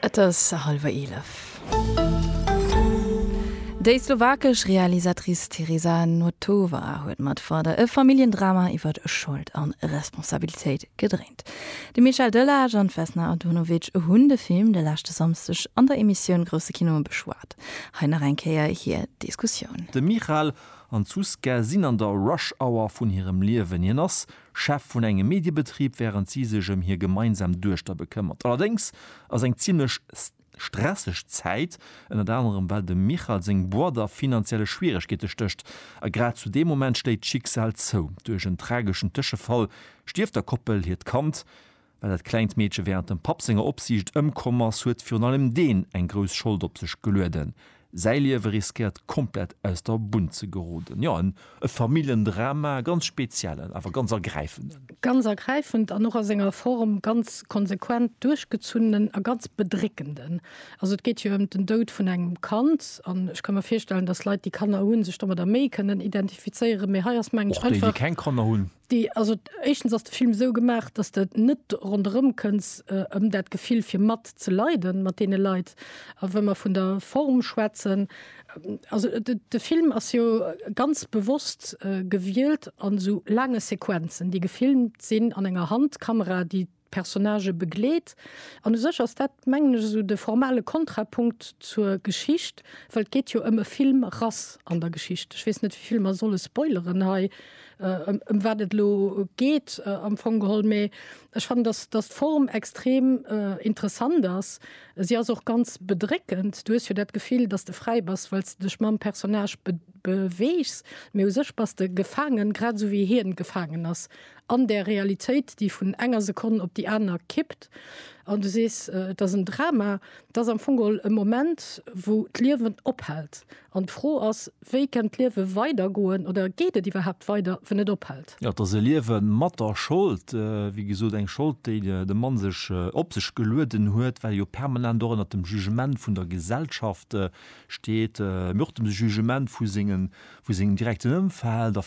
Et ass hallwer eelef. Déi slowakesch Realisatrice Tereza Notová huet mat Father e Familljendrama iwwer Schold a Responsabilitéit gedréint. De Michel Delage an d'Vesna Antonovic hunn de Film de leschte Samsdeg an der Emissioun Grousse Kino beschwat. Hei nach eng Kéier hir Diskussioun. De Michal an d'Zuzka sinn an der Rush Hour vun hirem Liewen. Hien ass Chef vun engem Mediebetrib, wärend si sech ëm hir gemeinsam Duechter bekëmmert. Allerdéngs ass eng zimmlech stresseg Zäit, ënnert anerem well dem Michal seng Boîte a finanzielle Schwieregkeete stécht. A grad zu deem Moment schléit d'Schicksal zou. Duerch en trageschen Tëschefall stierft der Koppel hiert Kand. Well dat klengt Meedche wärend dem Papp senger Opsiicht ëmkomm ass, huet virun allem deen eng grouss Schold op sech gelueden. Säi Liewe riskéiert komplett aus der Bunn ze geroden. Jo, e Familljendrama, e ganz speziellen, awer ganz ergräifenden. Ganz ergräifend an och a senger Form ganz konsequent duerchgezunnenen a ganz bedréckenden. Also et geet jo ëm den Doud vun engem Kand an ech ka mir virstellen, datt Leit déi Kanner hunn, sech domadder méi kënnen identifizéieren, mee hei ass mengen ech einfach. Och déi, déi keng Kanner hunn. Déi, also éischtens ass de Film esou gemaach, dass de net ronderëm kënns ëm dat Gefill fir mat ze leiden mat deene Leit. A wa mer vun der Form schwätzen, also de Film ass jo ganz bewosst gewielt an esou laange Sequenzen, déi gefilmt sinn an enger Handkamera, déi Personnagë begleet. An u sech ass dat, mengen ech, esou de formale Kontrapunkt zur Geschicht, well et geet jo ëm e Film Rass an der Geschicht. Ech weess net, wéi vill mer solle spoileren hei, ëm wat et elo geet am Fong geholl. Mee ech fannen, datt, datt d'Form extrem interessant ass. Si ass och ganz bedréckend. Du hues jo dat Gefill, datt s de fräi bass, well s de dech mam Personnage beweegs. Mee u sech bass de gefaangen, grad esou wéi hien gefaangen ass an där Realitéit, déi vun enger Sekonn op déi aner kippt, an du sees, et ass en Drama, et ass am Fong e Moment, wou d'Liewen ophält. An d'Fro ass, wéi kennt d'Liewe weidergoen oder geet et iwwerhaapt weider, wann et ophält? Jo, et ass e Liewe mat der Schold, wéi gesot, eng Schold, déi de Mann sech op sech gelueden huet, well e jo permanent och ënnert dem Jugement vun der Gesellschaft steet, mee och dem Jugement vu sengem direkten Ëmfeld.